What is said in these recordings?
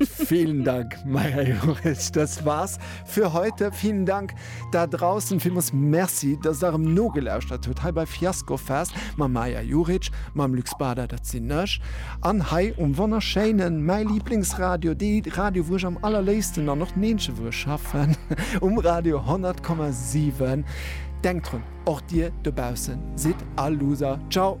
Vielen Dank Maja Joris, das war's für heute. Vielen Dank da draussen Vimus Merci, dass der em nogelauschtert huet hei bei Fiasco Fest ma Maja Juric, mam Lux Bader, dat sinn ech an hei um wonnerschéinen mäi Lieblingsradio, dee Radio wou ech am allerléifsten an och d'Meedche wou ech schaffen um Radio 10,7. Denkt drun, och dir dobaussen sidd all Loser. Ciao.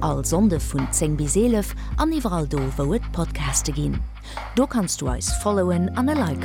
All Sonnde vun 10 bis 11 an iwwerall do wou et Podcaste ginn. Do kanns du eis followen an e Like.